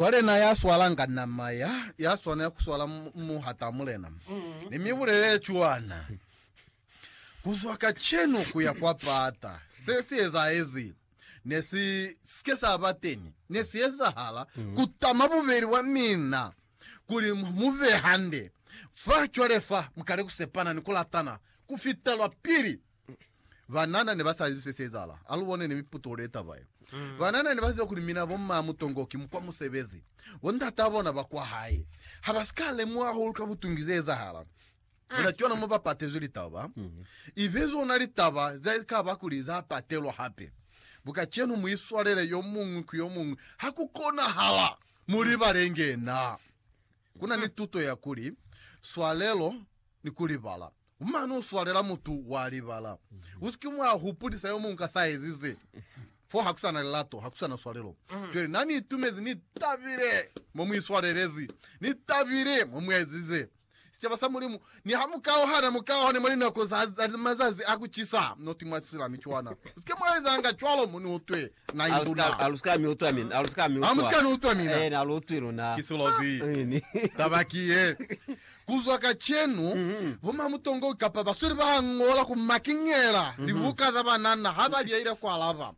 Cwale na ya swalanga nama ya, ya swanela ku swala mu, mu hata Mulena. Ni mi bulelele cwana. Ku zwa kacenu ku ya kwa pata, se si ezaezi, ne si, sike sa ba teni, ne si ezahala, ku tama bubeli bwa mina, kuli mu be hande. Fa, cwale fa, mukale ku sepana ni ku latana, ku fita lwa pili. Banana ne ba sa izwi se si ezahala. A lu bone ni miputulo ye taba ye. Banana ne ba ziba kuli mina bo mma Mutongo ki mukwa musebezi. Bo ndat'a bona ba kwa hae ha ba si ka lemuha hahulu ka butungi ze ezahala. Ona cwana mo ba patezwi litaba. I be zona litaba ze ka ba kuli za patelwa hape. Bu kacenu mu iswalele yo muñwi ku yo muñwi ha ku konahala, mu libalenge na. Ku na ni tuto ya kuli, Swalelo ni ku libala. U mane u swalela mutu wa libala. U si ke mwa hupulisa yo muñwi ka sa ezize. Fo ha ku sa na lilato, ha ku sa na swalelo. Cwale na ni itumezi, ni tabile mo mu iswalelezi, ni tabile mo mu ezize. Sicaba sa Mulimu, niha mu kauhana, mu kauhane mwa linako za mazazi a ku cisa, not mwa silami cwana. U si ke mwa ezanga cwalo mo ni utwe na i luna. Alusika mi utwa mina. Alusika mi utwa. Amusika ni utwa mina. Ena alu utwi luna. Ki silozi. Ini. Taba ki ye. Kuzwa kacenu, bo mamutongo kapa basweli ba Angola ku makiñela libuka za banana ha ba liaile ku alaba.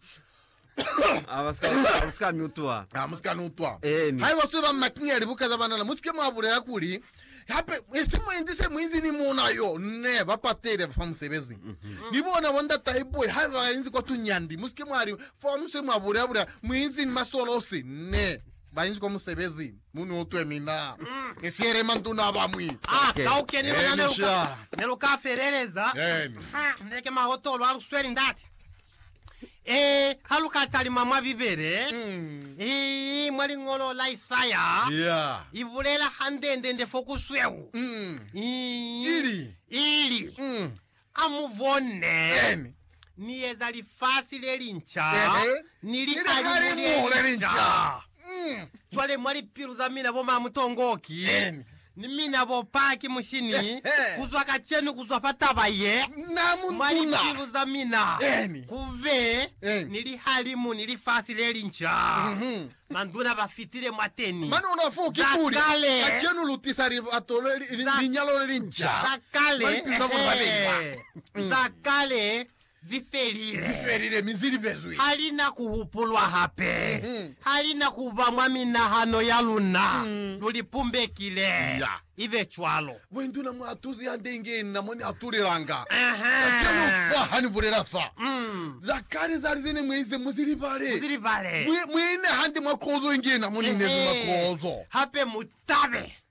Alusika mi utwa. Amusika ni utwa. Eni. Haiba basweli ba makiñela libuka za banana, musike mwa bulela kuli, Hape, esi muinzi se muinzi ni muuna yo ne ba patile fa musebezi. Ni bona bo ndatai boe ha ba inzi kwa tunyandi. Musike mwa li, Fa mu se mwa bulabula, muinzi ni masolosi ne ba inzi kwa musebezi. Mu ni utwe mina, ni siyele manduna a bañwi. A kauke ni luna ne lu ka feleleza. Ni leke mahotolo a lu sweli ndate. Ee, ha lu ka talima mwa Bibele, i mwa liñolo la Isaya, Ya. i bulela hande-nde-nde fo ku sweu, Mm. i, Ili. ili, Mm. A mu bone, Amen. Ni eza lifasi le linca, Ehe. ni lihalimu le linca. Mm. Cwale mwa lipilu za mina bo mamutongoki Amen. ni mina bo paki mushini, Ehe. kuzwa kacenu, kuzwa fa taba ye, Na mwa muntuna. lipilu za mina Amen. kube Amen. ni lihalimu ni lifasi lelinca. Mhm. Manduna ba fitile mwateni. Mane ona foo ki Za kuli kale. kacenu lu tisa libato le li- li- Za- linyalo lelinca za kale, mwa lipilu za bona ba bengi ba. ehe, za kale Zi felile. Zi felile mi zi lipezwi. Ha li na ku hupulwa hape. Ha li na ku ba mwa minahano ya luna. Lu li pumbekile. Iya. I be cwalo. Mwenduna mwa tuzi hande inge inna mo ni atulelanga. Kacenu fa ha ni bulela fa, za kale za lize ne mu ize mu zi libale. Mu zi libale. Mu, mu ine hande mwa kozo inge ina mo ni inezi mwa kozo. Hape mu tabe.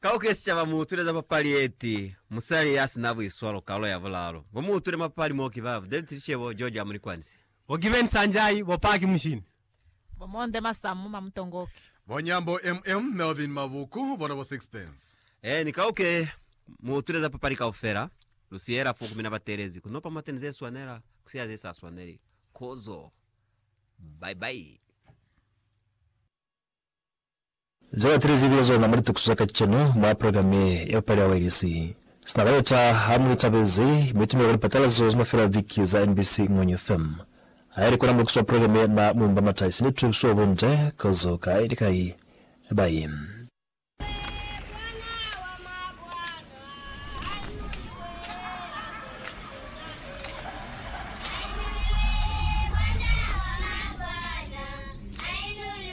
Ka ku kesi caba mu utuleza papali yeti Musali ya sina buiswalo kalo ya bulalu. Bo mu utule mapali mo ki baba, David Lishebo, George Amulikwanise. Bo Given Sanjay, bo Paki Mushini. Bo Monde Masamu Mamutongoki. Bo Nyambo MM Melvin Mabuku, bona bo Sixpence. Eeni, ka ku ke mu utuleza papali kaufela, lu siyela fo ku mina batelezi, ku nopa mateni ze swanela, ku siya ze sa swaneli. Kozo. Bye bye. Ze batu li zibile zona mwa litukiso za kacenu mwa programe ya bupale ya wailesi. Sina ka yota ha mu itabezi, mi itumela ku lipatalazo za mafelo a viki za NBC Ngony FM. Ha ili kona muekiso wa programe ye na mu mba mata isili tukiso wa bunde ka zo ka ili kai bai.